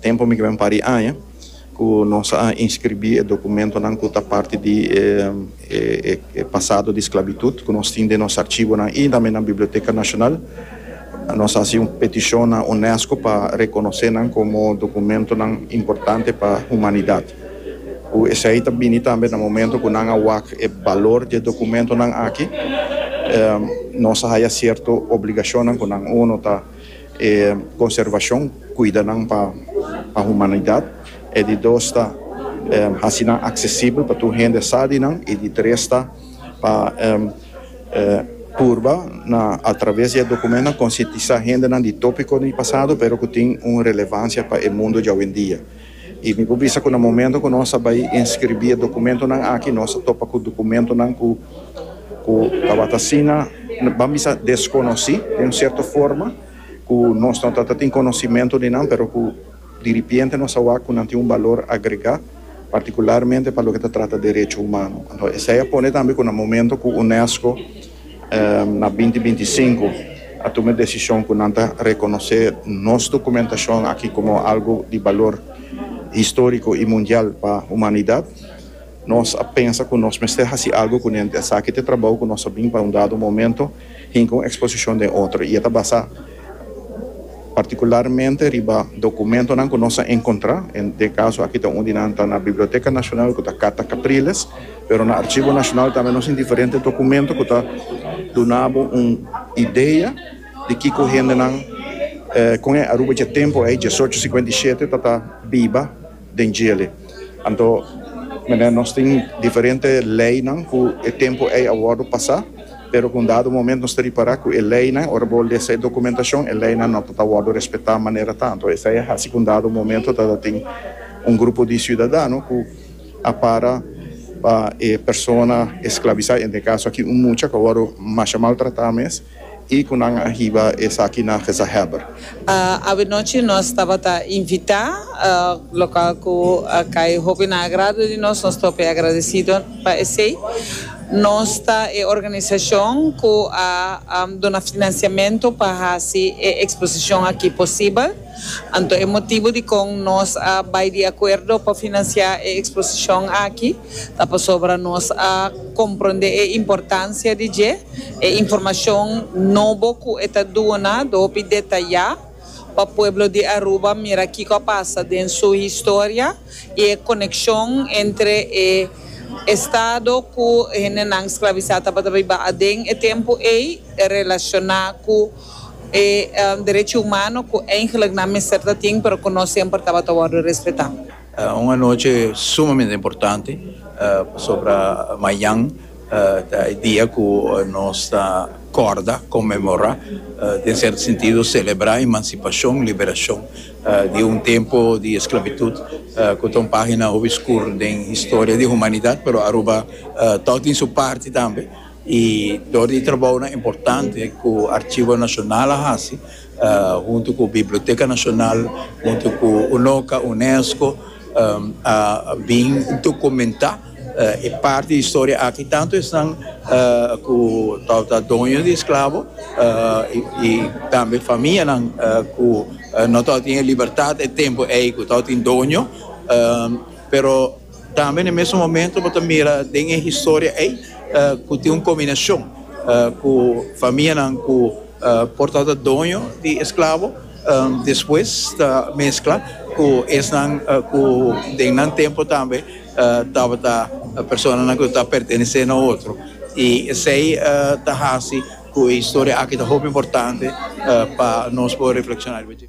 Tempu mi keda un par di aña ku nos a inskribí e dokumentonan ku ta parti di e pasado di sklabitut ku nos tin den nos archibonan i tambe na Biblioteka Nashonal. Nos a hasi un petishon na UNESCO pa rekonosé nan komo dokumentonan importante pa humanidat. Ku esei ta bini tambe na momentu ku nan a wak e balor di e dokumentonan aki, nos a haya sierto obligashonnan ku nan. Uno ta. E konservashon kuida nan pa humanidat. E di dos ta hasi nan aksesibel pa tur hende sa di nan. E di tres ta pa purba na atraves di e dokumentunan konsientisá hendenan di topikonan di pasado pero ku tin un relevansia pa e mundu djawendia. I mi por bisa ku na momento ku nos a bai inskribí e dokumentunan aki nos a topa ku dokumentunan ku ku tabata asina ban bisa deskonosí den un sierto forma ku nos no ta ta tin konosimentu di nan pero ku di ripiente nos a wak ku nan tin un balor agregá partikularmente pa loke ta trata derecho humano. Esei a pone tambe ku na momento ku UNESCO. Na binti binti sinku a tuma e desishon ku nan ta rekonosé nos dokumentashon aki komo algu di balor históriko i mundial pa humanidat. Nos a pensa ku nos mester hasi algu ku nenti esaki. Te trabou ku nos a bin pa un dado momento hinka un eksposishon den otro i e ta basá. partikularmente riba dokumentonan ku nos a enkontrá, en e kaso aki ta un di nan ta na Biblioteka Nashonal ku ta Carta Capriles, pero na Arshivo Nashonal tambe nos tin diferente dokumento ku ta duna bo un idea di kiko hendenan kon e Aruba dje tempu ei, diesocho sikuenta i shete, ta ta biba. den djele. Anto mene nos tin diferente leynan cu e tempo ey a wordo pasa, pero cu un dado moment nos ta ripara cu e leynan, ora bo lesa e documentacion, e leynan no ta ta wordo respeta manera ta. Anto esey a haci cu un dado momento ta ta tin un grupo di ciudadano cu a para pa e persona esclavisa, en e caso aki un mucha cu a wordo masha maltrata mes. I ku nan a hiba esaki na gezahèber. Avenochi nos tabata invitá, lokal ku a kai hopi na agrado di nos. Nos ta hopi agradesido pa esei. Nos ta e organisashon ku a duna finansiamentu pa hasi e eksposishon aki posibel. Anto e motibu dikon nos a bai di akuerdo pa finansiá e eksposishon aki. Ta pasobra nos a komprondé e importansia di dje. E informashon nobo ku e ta duna ta hopi detayá pa pueblo di Aruba mira kiko a pasa den su historia i e konekshon entre e estado ku hendenan sklabisá tabata biba aden e tempu ei relashoná ku e derechi humano ku eigenlik nan mester ta tin pero ku no semper tabata wòrdu respetá. Un anochi sumamente importante pasobra mañan ta e dia ku nos ta kòrda, konmemorá, den sierto sentido selebrá emansipashon, liberashon di un tempu di esklabitut ku ta un página hopi skur den historia di humanidat, pero Aruba tòg tin su parti tambe i dor di trabounan importante ku Archivo Nacional a hasi. huntu ku Biblioteka Nashonal, huntu ku UNOCA, UNESCO, a bin dokumentá e parti di historia aki, tantu esnan ku tabata ta doño di esklabo i tambe famianan ku no tabata tin e libertat e tempu ei ku tabata tin doño, pero. Tambe na e mesun momento bo ta mira den e historia ei ku tin un kombinashon ku famianan ku por tabata doño di esklabo despues ta meskla ku esnan ku den nan tempu tambe tabata personanan ku ta pertenesé na otro i esei ta hasi ku e historia aki ta hopi importante pa nos por reflekshoná riba dje.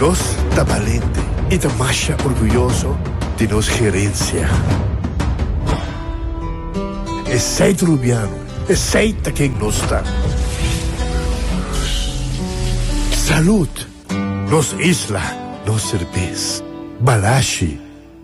Nos ta balente i ta masha orguyoso di nos herensia. Esei ta Rubiano, esei ta ken nos ta. Salud! Nos isla, nos serbes. Balashi!